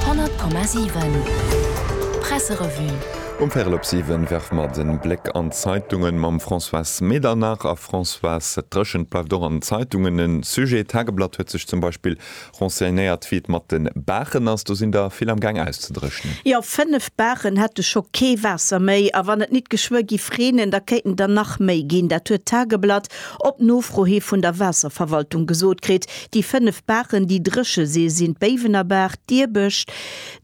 100,7 Presserevue Um Véirel op siwen werfe mer den Bléck an d'Zeitungen mam Françoise Medernach. A Françoise, dat Dréchent bleift och an den Zeitungen en Sujet. D'Tageblatt huet sech zum Beispill renseignéiert wéi et mat den Baachen ass. Do sinn der vill am Gaang auszedréchnen. Jo, 5 Baachen hätte scho kee Waasser méi, a wann et nit geschwë giff reenen, da kéinten der nach méi ginn. Dat huet d'Tageblatt Op Nofro hi vun der Waasserverwaltung gesot kritt, déi 5 Baachen, déi dréche si, sinn d'Béiwenerbaach, d'Diebësch,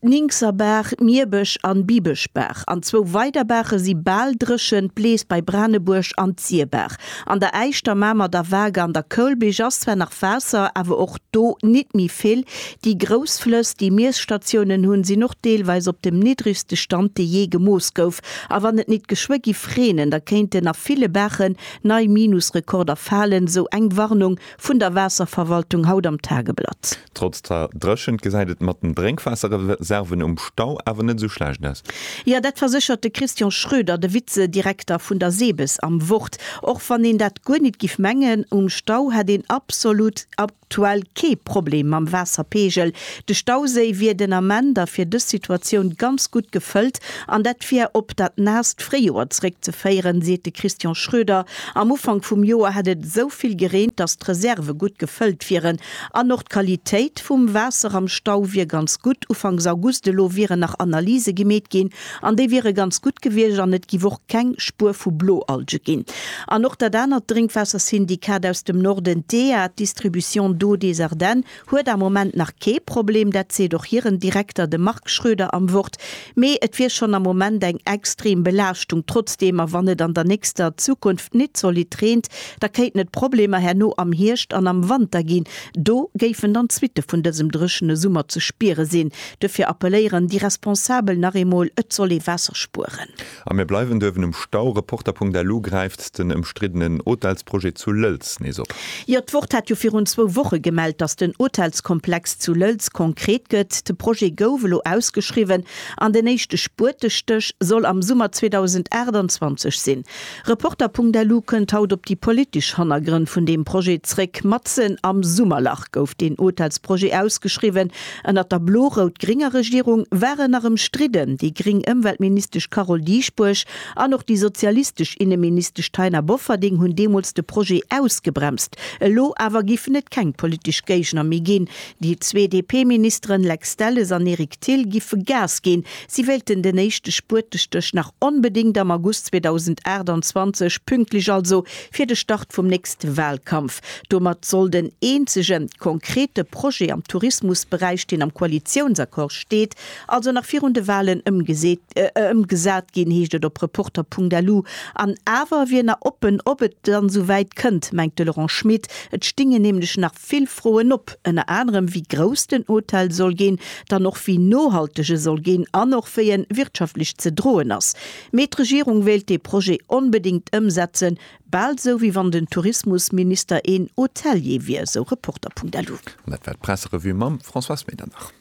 d'Ninkserbaach, d'Mierbësch an d'Bibëschbaach. An zwou weider Baache si bal dréchen, d'Blees bei Branebuerg an d'Sierbaach. An der Äisch, der Mamer, der Waark an der Koulbich ass zwar nach Waasser, awer och do nit méi vill. Déi grouss Flëss, déi Miesstatiounen hunn, sinn och deelweis op dem niddregste Stand, dee jee gemooss gouf. A wann et nit geschwë giff reenen, da kéinten a ville Baachen Nei Minusrekorder falen, sou eng Warnung vun der Waasserverwaltung haut am Tageblatt. Trotz der Dréchent gesäit et mat den Drénkwaasserreserven um Stau awer net esou schlecht aus. Jo, dat verséchert de Christian Schroeder, de Vizedirekter vun der Sebes am Wort. Och wann een dat guer nit giff mengen, um Stau hätt een absolut Aktuell kee Problem mam Waasserpeegel. De Stauséi wier den Ament a fir dës Situatioun ganz gutt gefëllt an dat wier op dat naasst Fréijoer zeréckzeféieren, seet de Christian Schroeder. Am Ufank vum Joer hätt et esou vill gereent, datt d'Reserve gutt gefëllt wieren an och d'Qualitéit vum Waasser am Stau wier ganz gutt. Ufanks August elo wieren nach Analyse gemeet ginn, An déi wiere ganz gutt gewiescht an et giff och keng Spuer vu Bloalge ginn. An och dat anert Drénkwaassersyndikat aus dem Norden, d'EA, d'Distribution d'eau des Ardennes, huet am Moment nach kee Problem, dat seet och hiren Direkter, de Marc Schroeder, am Wort. Mee et wier schonn am Moment eng extrem Belaaschtung trotzdeem. A wann et an der nächster Zukunft nit zolidd reent, da kéinten et Problemer herno am Hierscht an am Wanter ginn. Do géifen dann d'Suitte vun dësem dréchene Summer ze spiere sinn, Duerfir appelléieren déi Responsabel nach eemol, et soll ee Waasser spueren. A mir bleiwen duerwen um Stau. Reporter.lu gräift den ëmstriddenen Hotelsprojet zu Lëlz nees op. Jo, d'Wort hat jo virun zwou Woche gemellt, datt den Hotelskomplex zu Lëlz konkret gëtt. De Projet gouf elo ausgeschriwwen an den éischte Spuertestéch soll am Summer 2028 sinn. Reporter.lu kënnt haut op déi politesch Hannergrënn vun deem Projet zréck. Matzen am Summerlach gouf deen Hotelsprojet ausgeschriwwen. Ënnert der blo-rout-grénger Regierung ware nach ëmstridden déi gréng Ëmweltministesch Carole Dieschbourg an och déi sozialistesch Inneministesch Taina Bofferding hunn deemools de Projet ausgebremst. Elo awer giffen et keng politesch Géigner méi ginn. Déi zwee DP-Ministeren Lex Delles an Eric Thill giffe Gas ginn. Si wéilten den éischte Spuertestéch nach onbedéngt am August 2028, pünktlech also fir de Start vum nächste Walkampf. Domat soll den eenzege konkrete Projet am Tourismusberäich, deen am Koalitiounsaccord steet, also nach virun de Walen ëmgesat ginn, heescht et op Reporter.lu. An awer wier nach oppen, ob et dann esou wäit kënnt, mengt de Laurent Schmit. Et stinge nämlech nach vill Froen op, ënner anerem wéi grouss den Hotel soll ginn, dann och wéi nohalteg e soll ginn an och wéi e wirtschaftlech ze droen ass. Mee d'Regierung wéilt dee Projet onbedéngt ëmsetzen, Bal esou wéi wann den Tourismusminister een Hotelier wier, esou Reporter.lu. An dat war d'Presserevue mam Françoise Medernach.